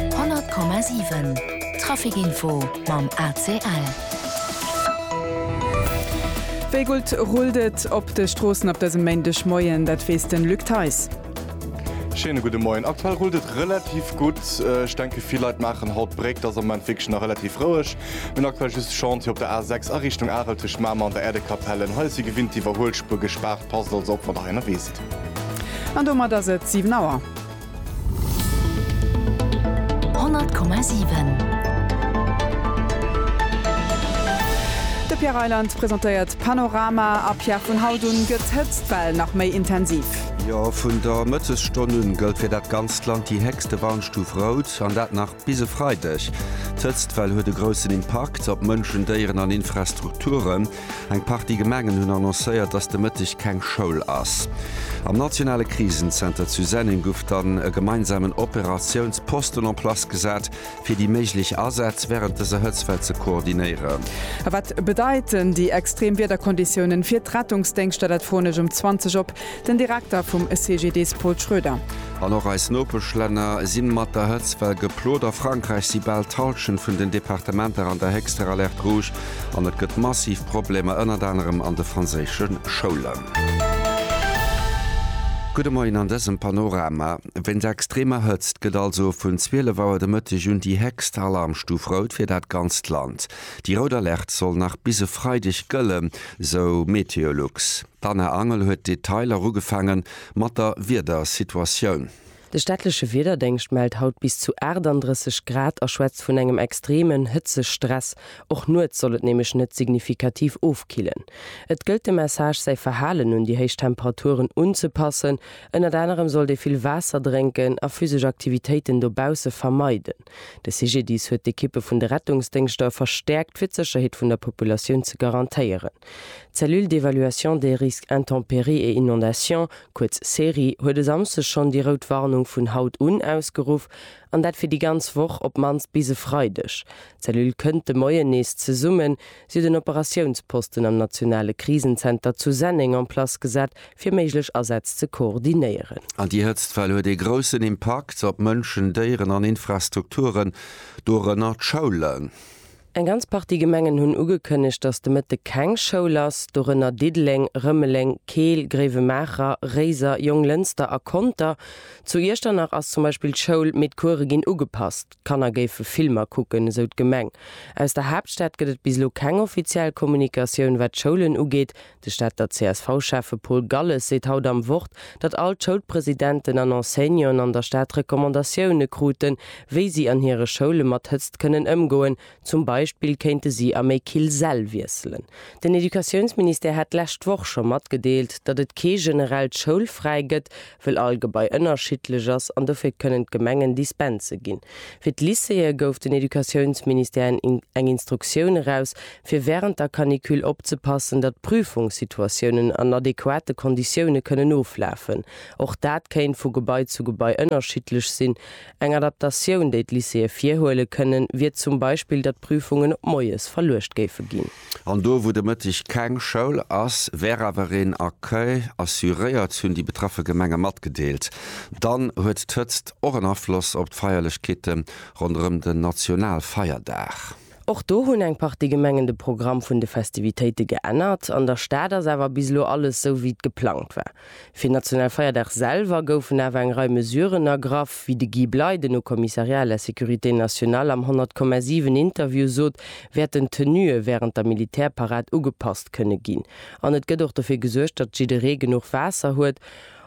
100,7 Trafic-Info mam ACL. Wéi gutt rullt et op de Stroossen op dësem Méindegmoien? Dat weess de Luc Theis. Schéine gudde Moien. Aktuell rullt et relativ gutt. Ech denke vill Leit maachen haut d'Bréck. Et ass am Moment wierklech nach relativ roueg. Mir hunn aktuell just Chantier op der A6 a Richtung Arel tëscht Mamer an der Äerdekapellen. Hei ass wéi gewinnt d'Iwwerhuelspuer gespaart. Passt also op, wann der hei ënnerwee sidd. An domat ass et 7 Auer. De Pierre Reyland presentéiert Panorama a Pierre, vun haut un gëtt d'Hëtztwell nach méi intensiv. Jo, vun der Mëttesstonn un gëllt fir dat ganzt Land déi héchste Warnstuf Rout, an dat nach. Bis e Freideg. D'Hëtztwell huet e groussen Impakt op Mënschen, Déieren an Infrastrukturen. Eng Partie Gemengen hunn annoncéiert, dass de Mëtteg keng Schoul ass. Am nationale Krisenzenter zu Senneng gouf dann e gemeinsamen Operatiounsposten en place gesat, fir déi méiglech Asätz wärend dëser Hëtztwell ze koordinéieren. A wat bedeiten déi extrem Wiederkonditiounen fir d'Rettungsdéngschter? Dat froen ech um 20 op Den Direkter vum CGDIS Paul Schroeder. An och eis Nopeschlänner si mat der Hëtzt well geplot. A Frankräich si bal d'Hallschent vun den Departementer an der héchster Alerte rouge an et gëtt massiv Problemer ënnert anerem an de franséische Schoulen. Gudde Moien an dësem Panorama. Wéinst der extremer Hëtzt gëtt also vun 12 Auer de Mëtteg un déi héchst Alarmstuf rout fir dat ganzt Land. Déi rout Alerte soll nach bis e Freideg gëllen, sou MeteoLux. D'Anna Angel huet d'Detailer erugefaange mat der Wiedersituatioun. De staatleche Wiederdéngscht mellt haut bis zu 38 Grad a schwätzt vun engem extreemen Hëtzestress. Och nuets soll et nämlech net signifikativ ofkillen. Et gëllt de Message, säi Verhalen un déi héich Temperaturen unzepassen. Ënnert anerem sollt ee vill Waasser drénken a physesch Aktivitéiten dobausse vermeiden. De CGDIS huet d'Ekippe vun de Rettungsdéngschter verstäerkt, fir d'Sécherheet vun der Populatioun ze garantéieren. D'Cellule d'évaluation des risques intempéries et inondations, kuerz CERI, huet e Samsde schonn déi rout Warnung vun haut un ausgeruff, an dat fir déi ganz Woch, op d'mannst bis e Freideg. D'Cellule kënnt de Moien nees zesummen, Si huet en Operatiounsposten am nationale Krisenzenter zu Senneng en place gesat, fir méiglech Asätz ze koordinéieren. An déi Hëtztwell huet ee groussen Impakt op Mënschen, Déieren an Infrastrukturen, dorënner d'Schoulen. Eng ganz Partie Gemengen hunn ugekënnegt, datt de Mëtteg keng Schoul ass, dorënner Diddeleng, Rëmeleng, Keel, Gréiwemaacher, Réiser, Jonglënster a Conter. Zu Iechternach ass zum Beispill d'Schoul, mee d'Course ginn ugepasst. D'Kanner géife Filmer kucken, esou d'Gemeng. Aus der Haaptstad gëtt et bis elo keng offiziell Kommunikatioun, wat d'Schoulen ugeet. De Stater CSV-Schäffe Paul Galles seet haut am Wort, datt all d'Schoulpresidenten an Enseignanten an der Stad Recommandatioune kruten, wéi si an hire Schoule mat Hëtzt kënnen ëmgoen, Zum Beispill kéinte si a méi kill Säll wiesselen. Den Educatiounsministère hat d'lescht Woch scho matgedeelt, datt et kee generellt Schoulfräi gëtt, wëll all Gebai ënnerschiddlech ass an dofir kënnen d'Gemengen Dispense ginn. Fir d'Lycéeë gouf den Educatiounsministère eng Instruktioun eraus, fir wärend der Canicule opzepassen, datt d'Prüfungssituatiounen an adequate Konditioune kënnen oflafen. Och dat kéint vu Gebai zu Gebai ënnerschiddlech sinn, Eng Adaptatioun, déi d'Lycéeë virhuele kënnen, wier zum Beispill, datt d'Prüfungen op moies verluecht géife ginn. An do, wou de Mëtteg keng Schoul ass, wär awer een Accueil assuréiert, hunn déi betraffe Gemenge matgedeelt. Dann huet d'Hëtzt och en Afloss op d'Feierlechkeete ronderëm den Nationalfeierdag. Och do hunn eng Partie Gemengen de Programm vun de Festivitéite geännert. An der Stad ass awer bis elo alles sou wéi et geplangt war. Fir Nationalfeierdag selwer goufen awer eng Rei Mesuren ergraff, wéi de Guy Bley, den Haut Commissariat à la sécurité nationale am 100,7 Interview sot, wäerten d'Tenue wärend der Militärparad ugepasst kënne ginn. An et gëtt och dofir gesuergt, datt jidderee genuch Waasser huet.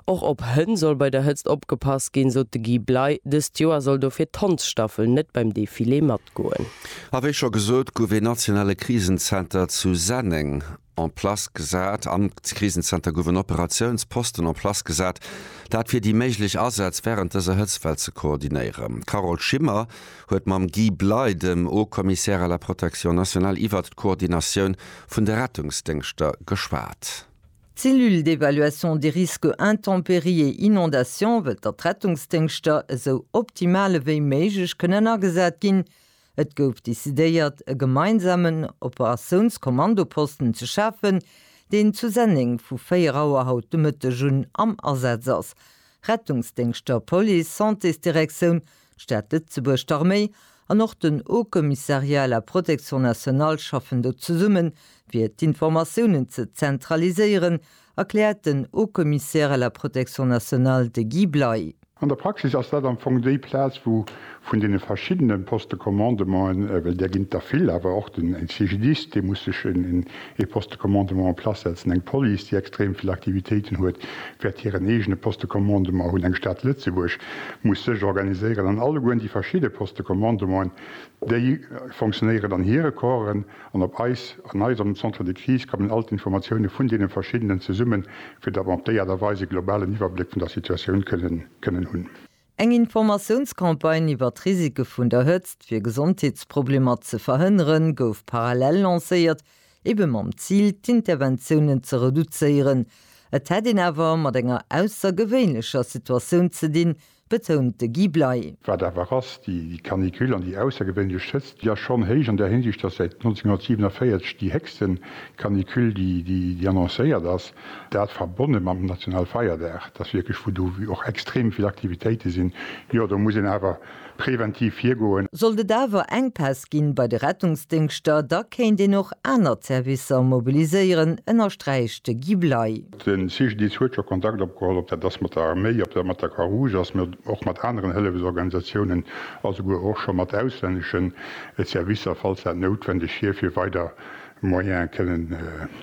Och op Hënn soll bei der Hëtzt opgepasst ginn, sot de Guy Bley. Dëst Joer soll dofir d'Hondsstaffel net beim Defilé matgoen. A wéi scho gesot, gouf ee nationale Krisenzenter zu Senneng en place gesat. Am Krisenzenter gouf en Operatiounsposten en place gesat, dat fir déi méiglech Asätz wärend dëser Hëtztwell ze koordinéieren. D'Carole Schimmer huet mam Guy Bley, dem Haut-Commissaire à la protection nationale, iwwert d'Koordinatioun vun de Rettungsdéngschter geschwat. D'Cellule d'évaluation des risques intempéries et inondations wëllt datt d'Rettungsdéngschter esou optimal ewéi méiglech kënnen agesat ginn. Et gouf decidéiert e gemeinsamen Operatiounskommandoposten ze schafen, deen zu Senneng vu 4 Auer haut de Mëtteg un am Asaz ass. Rettungsdéngschter, Police, Santésdirektioun D'Stad Lëtzebuerg, d'Arméi an och den Haut Commissariat à la Protection Nationale schaffen do zesummen, fir d'Informatiounen ze zentraliséieren, erkläert den Haut Commissaire à la Protection Nationale, de Guy Bley. An der Praxis ass dat am Fong déi Plaz, wou vun deene verschiddene Poste-commandementen, well där ginn et der vill, awer och den CGDIS, dee muss sech Ee Poste Commandement en place setzen, eng Police, déi extrem vill Aktivitéiten huet, wäert hiren eegene Poste Commandement hunn. Eng Stad Lëtzebuerg muss sech organiséieren an allegueren déi verschidde Poste Commandementen, déi fonctionnéieren an hire Corpsen an op eis, an eis am Centre de Crise kommen all d'Informatioune vun deene verschiddenen zesummen, fir datt mer op déi Aart a Weis e globalen Iwwerbléck vun der Situatioun kënnen hunn. Eng Informatiounscampagne iwwer d'Risike vun der Hëtzt, fir Gesondheetsproblemer ze verhënneren, gouf parallel lancéiert, ebe mam Zil, d'Interventiounen ze reduzéieren. Et hätt een awer mat enger aussergewéinlecher Situatioun ze dinn, betount de Guy Bley. Wat awer ass, déi Canicule an déi aussergewéinlech Hëtzt, déi ass schonn héich an där Hinsicht, dass säit 1947 déi héchste Canicule déi annoncéiert ass. Dat verbonne mam Nationalfeierdag, dat ass wierklech, wou do och extrem vill Aktivitéite sinn. Jo, do muss een awer preventiv virgoen. Sollt et awer Enkpäss gi bei de Rettungsdéngschter, da kéint een och aner Zerwisser mobiliséieren, ënnersträicht de Guy Bley. De CGDIS huet scho Kontakt opgeholl, ob dat ass mat der Arméi, ob dat mat der Croix-Rouge ass, mee och mat aneren Hëllefelsorganisatiounen a souguer och scho mat auslänneschen Zerwisser, falls dat noutwendeg wier, fir weider Moyen kënnen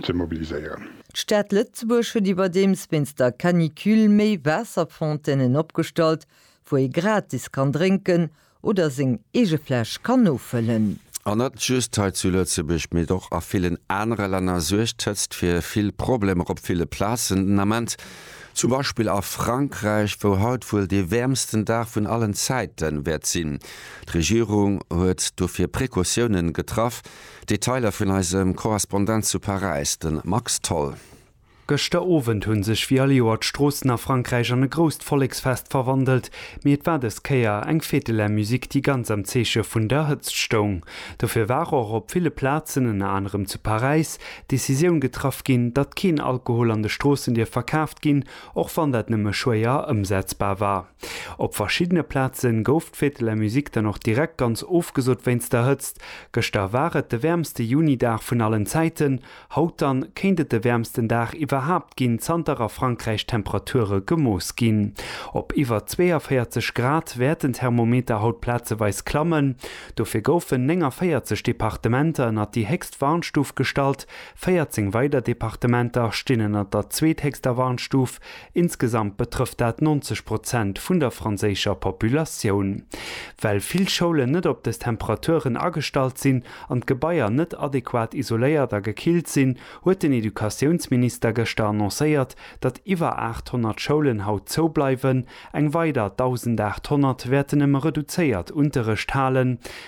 ze mobiliséieren. D'Stad Lëtzebuerg huet iwwerdeems wéinst der Canicule méi Waasserfontainen opgestallt, wou ee gratis kann drénken oder seng eege Fläsch kann nofëllen. An net just hei zu Lëtzebuerg, mee och a villen anere Länner suergt d'Hëtzt fir vill Problemer op ville Plazen den Ament. Zum Beispill a Frankräich, wou haut wuel dee wäermsten Dag vun allen Zäite wäert sinn. D'Regierung huet dofir Precautiounen getraff, Detailer vun eisem Korrespondent zu Paräis, de Max Tholl. Gëschter Owend hunn sech wéi all Joer d'Stroossen a Frankräich an e grousst Volleksfest verwandelt, mee et war dës Kéier eng Fête de la musique déi ganz am Zeeche vun der Hëtzt stoung. Dofir war och op ville Plazen, ënner anerem zu Paräis, d'Decisioun getraff ginn, datt keen Alkohol an de Stroossen dierf verkaaft ginn, och wann dat nëmme schwéier ëmsetzbar war. Op verschiddene Plaze gouf d'Fête de la musique dann och direkt ganz ofgesot wéinst der Hëtzt. Gëschter war et de wäermste Juni-Dag vun allen Zäiten. Haut dann kéint et de wäermsten Dag iwwerhaapt ginn, zanter a Frankräich d'Temperature gemooss ginn. Op iwwer 42 Grad wäerten d'Thermometer haut plazeweis klammen. Dofir goufen 49 Departementer ënnert déi héchst Warnstuf gestallt, 14 weider Departementer stinn ënnert der zweethéchster Warnstuf, Insgesamt betrëfft dat 90 Prozent vun der franséischer Populatioun. Well vill Schoulen net op des Temperaturen agestallt sinn an d'Gebaier net adequat isoléiert a gekillt sinn, huet den Educatiounsminister gëschter annoncéiert, datt iwwer 800 Schoulen haut zou bleiwen, eng weider 1.800 wäerten nëmme reduzéiert Unterrecht halen,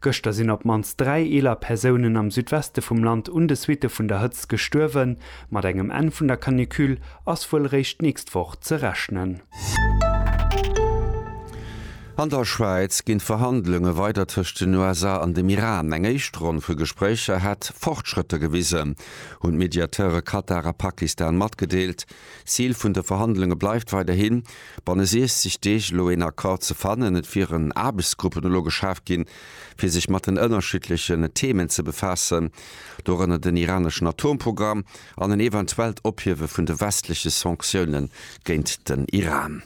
Gëschter sinn op d'mannst dräi eeler Persounen am Südweste vum Land un de Suitte vun der Hëtzt gestuerwen. Mat engem Enn vun der Canicule ass wuel eréischt d'nächst Woch ze rechnen. An der Schwäiz ginn d'Verhandlunge weider tëscht den USA an dem Iran. Eng éischt Ronn vu Gespréicher hätt Fortschrëtter gewisen, hunn d'Mediateure Katar a Pakistan matgedeelt. Zil vun de Verhandlunge bleift weiderhin, banne 60 Deeg elo een Accord ze fannen. Et wieren Aarbechtsgruppen elo geschaaft ginn, fir sech mat den ënnerschiddlechen Themen ze befaassen, dorënner den iraneschen Atomprogramm an en eventuellt Ophiewe vun de westleche Sanktioune géint den Iran.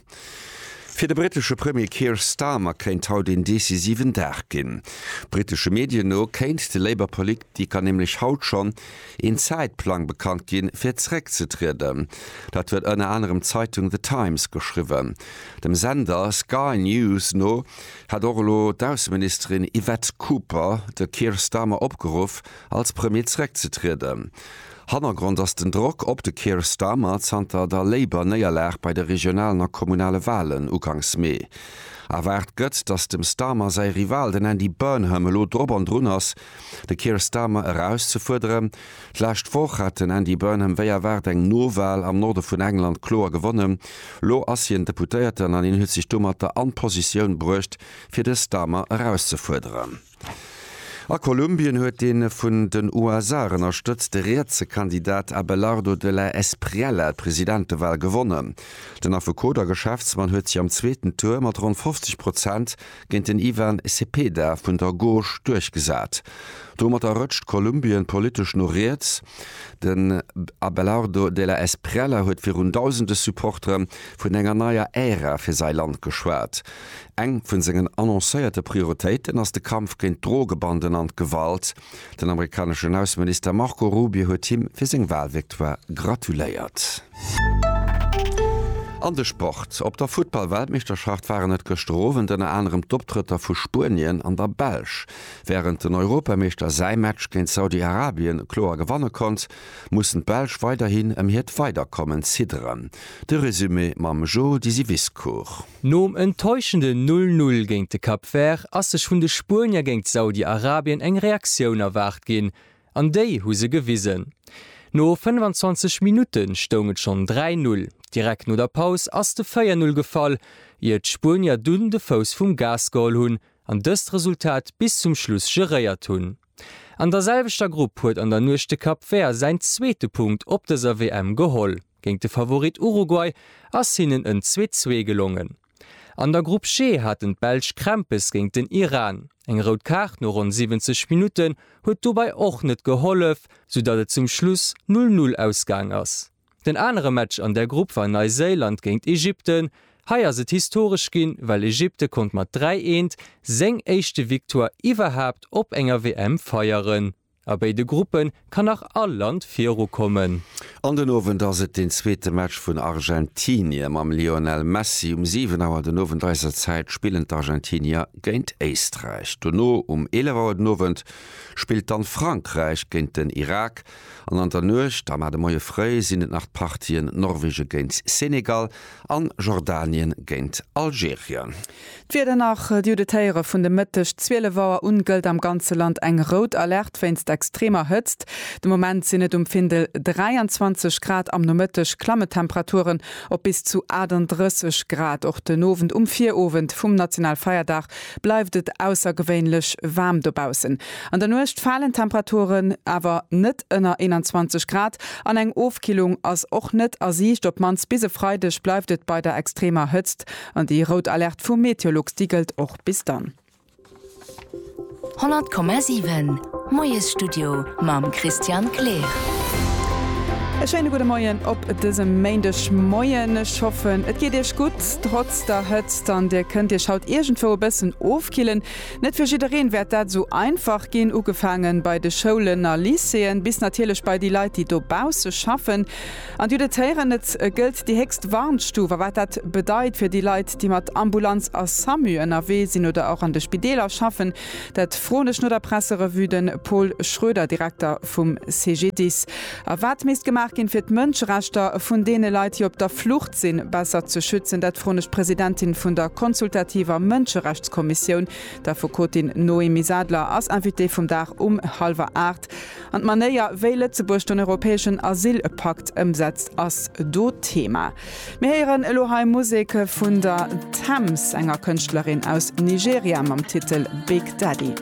Fir de brittesche Premier Keir Starmer kéint haut een decisiven Dag ginn. Brittesche Medien no kéint de Labour-Politiker nämlech haut schonn een Zäitplang bekannt ginn, fir zeréckzetrieden. Dat huet ënner anerem d'Zeitung The Times geschriwwen. Dem Sender Sky News no hätt och elo d'Ausseministerin Yvette Cooper de Keir Starmer opgeruff, als Premier zeréckzetrieden. Hannergrond ass den Drock op de Keir Starmer zanter der Labour-Néierlag bei de regionalen a kommunale Walen uganks Mee. Erwaart gëtt, datt dem Starmer säi Rival, den Andy Burnham, elo drop an drun ass, de Keir Starmer erauszefuerderen. D'lescht Woch hat den Andy Burnham wéi erwaart eng No-Wal am Norde vun England kloer gewonnen. Lo ass hien Deputéierten an hien huet sech domat der an Positioun bruecht, fir de Starmer erauszefuerderen. A Kolumbien huet dee vun den USA ënnerstëtzte rietse Kandidat Abelardo de la Espriella d'Presidentewahl gewonnen. Den Affekot a Geschäftsmann huet sech am zweeten Tour mat ronn 50 Prozent géint den Ivan Cepeda vun der Gauche duerchgesat. Domatter rëtscht Kolumbien politesch no riets. Den Abelardo de la Espriella huet virun dausende Supportere vun enger neier Ära fir säi Land geschwat. Eng vun sengen annoncéierte Prioritéiten ass de Kampf géint d'Drogebanden an d'Gewalt. Den amerikaneschen Ausseminister Marco Rubio huet him fir seng Walvictoire gratuléiert. An de Sport, Op der Futtball-Weltmeeschterschaft waren et gëschter Owend ënner anerem d'Optrëtter vu Spuenien an der Belsch. Wärend den Europameeschter säi Match géint Saudi-Arabien kloer gewanne konnt, mussen d'Belsch weiderhin ëm hiert Weiderkommen zidderen. De Resumé mam Joe Dysiviscourt. Nom enttäuschenden 'Null Null' géint de Cap Vert ass sech vun de Spuenier géint Saudi-Arabien eng Reaktioun erwaart ginn, an déi hu se gewisen. No 25 Minutte stoung et schonn 3 Null. Direkt no der Paus ass de 4 Null gefall, ier d'Spuenier dunn de Fouss vum Gas geholl hunn an dëst Resultat bis zum Schluss geréiert hunn. An der selwechter Grupp huet an der Nuecht de Cap Vert säin zweete Punkt op dëser WM geholl. Géint de Favorit Uruguay ass hinnen en Zweet-Zwee gelongen. An der Grupp G haten d'Belsch Krämpes géint den Iran. Eng rout Kaart no ronn 70 Minutten huet dobei och net gehollef, soudatt et zum Schluss 0, 0 ausgaang ass. Den anere Match an der Grupp war Neiséiland géint Egypten. Hei ass et historesch ginn, well Egypte konnt mat 3, 1 seng éischte Victoire iwwerhaapt op enger WM feieren. A béi de Gruppe kann nach all Land virukommen. An den Owend ass et deen zweete Match vun Argentinie mam Lionel Messi. Um 7 Auer den Owend eiser Zäit spillen d'Argentinier géint Éisträich. Dono um 11 Auer den Owend spillt dann Frankräich géint den Irak. An an der Nuecht a mar de Moie fréi sinn et nach d'Partien Norwegen géint Senegal an Jordanien géint Algerien. D'Wieder nach, Diu de Téiere vun de Mëtteg 12 Auer un gëllt am ganze Land eng rout Alerte wéinst extremer Hëtzt. De Moment sinn et um Findel 23 Grad, am Nomëtteg klammen d'Temperaturen op bis zu 38 Grad. Och den Owend, um Virowend vum Nationalfeierdag, bleift et aussergewéinlech waarm dobaussen. An der Nuecht falen d'Temperaturen awer net ënner 21 Grad an eng Ofkillung ass och net a Siicht. Op d'mannst bis e Freideg bleift et bei der extremer Hëtzt. An déi rout Alerte vu Meteolux, déi gëllt och bis dann. 100,7 Moiesstudio mam Christian Kleer. E schéine gudde Moien op dësem Méindegmoien. Ech hoffen, et geet Iech gutt, trotz der Hëtzt an Dir kënnt Iech haut iergendwou e bëssen ofkillen. Net fir jiddereen wäert dat esou einfach ginn, ugefaange bei de Schoulen a Lycéeën, bis natierlech bei déi Leit, déi dobausse schaffen. An Dir hutt et héieren, et gëllt déi héchst Warnstuf. A wat dat bedeit fir déi Leit, déi mat Ambulanz a Samu ënnerwee sinn oder och an de Spideeler schaffen, dat froen ech no der Presserevue de Paul Schroeder, Direkter vum CGDIS. A wat misst gemaach ginn, fir d'Mënscherechter vun deene Leit, déi op der Flucht sinn, besser ze schützen, dat froen ech d'Presidentin vun der consultativer Mënscherechtskommissioun, d'Affekotin Noémie Sadler ass Invitée vum Dag um hallwer aacht. An d'Manéier, wéi Lëtzebuerg den europäeschen Asylpakt ëmsetzt, ass do Thema. Mir héieren elo hei Musek vun der Tems, enger Kënschtlerin aus Nigeria, mam Titel Big Daddy.